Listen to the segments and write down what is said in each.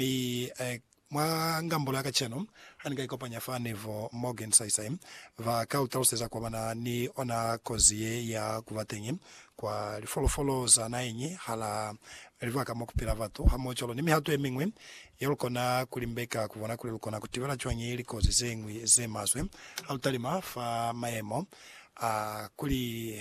Li e, mwa ngambulo ya kacenu, ha ni ka ikopanya fa ni bo Morgan saisai, ba ka lu taluseza kwa ba na ni ona kozi ye ya ku ba teñi kwa lifolofolo za naheñi hala libaka mo ku pila batu, hamohocwalo ni mihato ye miñwi ye lu kona ku limbeka ku bona kuli lu kona ku tibela cwañi likozi ze ñwi ze maswe ha lu talima fa mayemo a kuli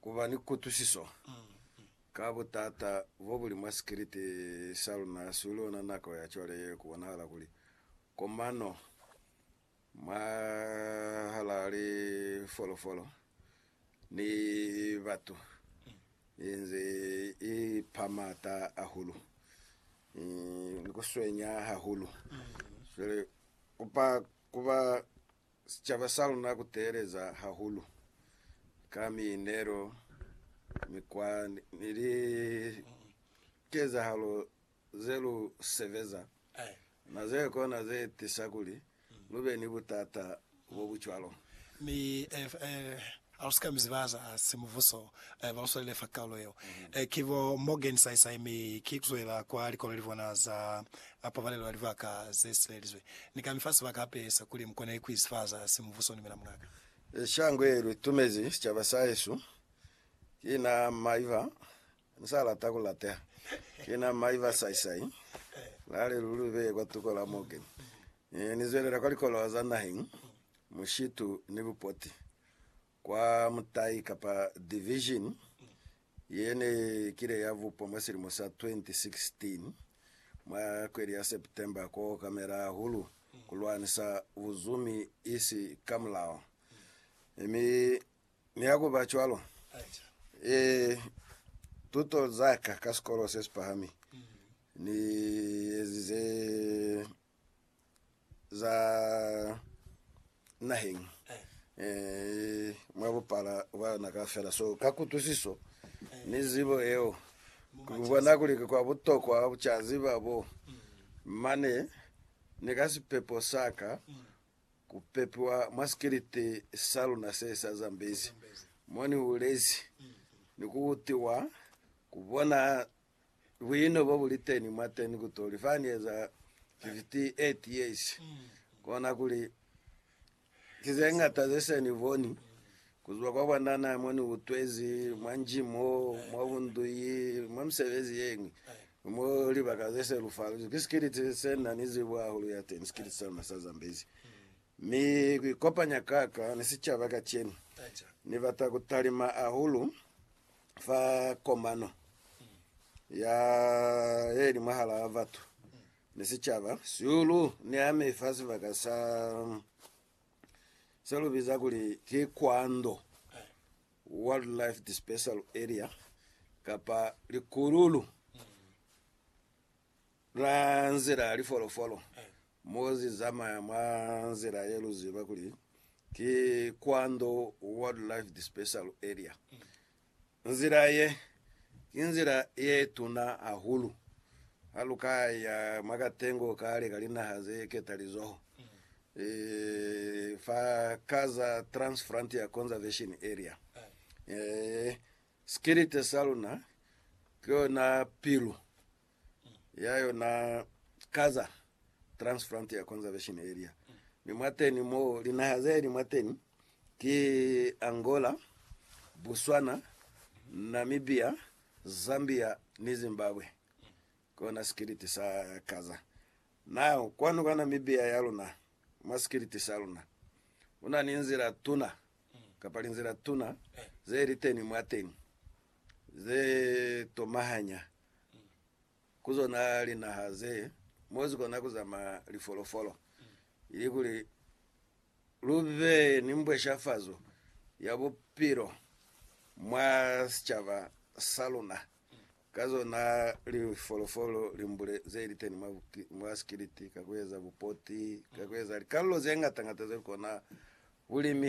ku ba ni kutwisiso ka butata bo buli mwa sikiliti sa luna suli ona nako ya cwale ye ku bonahala kuli komano mwahalaa lifolofolo ni batu i nze i pa m'ata ahulu ni ku swenya hahulu. Cwale kupa ku ba sicaba sa luna ku teeleza hahulu ka miinelo, mikwa, ni likezahalo ze lu sebeza na ze kona ze tisa kuli lu be ni butata bo bu cwalo. Mi Hausika mi ziba za simubuso ba uswalile fa kaulo yeo ki bo Morgan Saisai mi ki kuzwela kwa likolo libona za pabalelo ya libaka ze sibelizwe. Ni ka mi fa sibaka hape sa kuli mukone ku izifaza simubuso ni mina mungaka. Shango ye lu tumezi sicaba sahesu ki na Maiva Mu sa lata ku lateha. Ki na mai ba saisai, la li lu lu beye kwa tuko la mo ke. Ne ni zwelela kwa likolowa za naheng, mushitu ni bupoti, kwa mutai kapa division ye ne kile ya bupwa mwa silimo sa 2016, mwa kweli ya September, ku okamela hahulu ku lwanisa buzumi isi ka mulao. Mi Mi ha ku ba cwalo, e, tuto za ka ka sikolo se si pahami ni ezize za naheng e, mwa bupala bwa yona kaufela. So, ka kutwisiso ni zibo yeo, ku bona kuli ki kwa butokwa ku ca ziba bo mane ni ka sipepo sa ka Ku pepiwa mwa sikiliti sa luna se sa Zambezi mo ni hulezi ni ku utiwa, ku bona buino bo bu li teni mwateni ku toli fa ni eza 58 years, kona kuli ki ze ñata ze se ni boni ku zwa kwa bwanana mo ni utwezi, mwa nji mo, mwa bunduyi, mwa misebezi ye ñwi. Mu libaka ze selufaluzwi ki sikiliti se na ni zibo hahulu ya teñi, sikiliti sa luna sa Zambezi. Mi ku ikopanya ka ka ni sicaba kacenu, Ni bata ku talima hahulu fa komano ya ye li mwahalaa batu ni sicaba. Sihulu ni ami fa sibaka sa se lu biza kuli ki Kwando. Wildlife Dispersal Area, kapa likululu la nzila ya lifolofolo mo zi zamaya mwa nzila ye lu ziba kuli ki Kwando Wildlife Dispersal Area. Nzila ye, ki nzila ye tuna hahulu ha lu ka ya mwa katengo kale ka linaha ze ketalizoho fa ka za Transfrontier Conservation Area, sikilite sa luna ki yona pilu ya yona ka za Transfrontier Conservation Area. Mi mwateni mo, linaha ze li mwateni ki Angola, Botswana, Namibia, Zambia ni Zimbabwe. Kona sikiliti sa Gaza na kwanu ka Namibia ya luna, mwa sikiliti sa luna, ku na ni nzila tuna, kapa linzila tuna, ze li teni mwateni, ze tomahanya ku zona linaha ze, mo zi kona ku zamaya lifolofolo, ili kuli lu be ni mbweshafazo ya bupilo mwa sicaba sa luna, Ka zona lifolofolo limbule ze liteni mwa sikiliti ka kueza bupoti, ka kueza likalolo ze ngata-ngata ze lukona bulimi.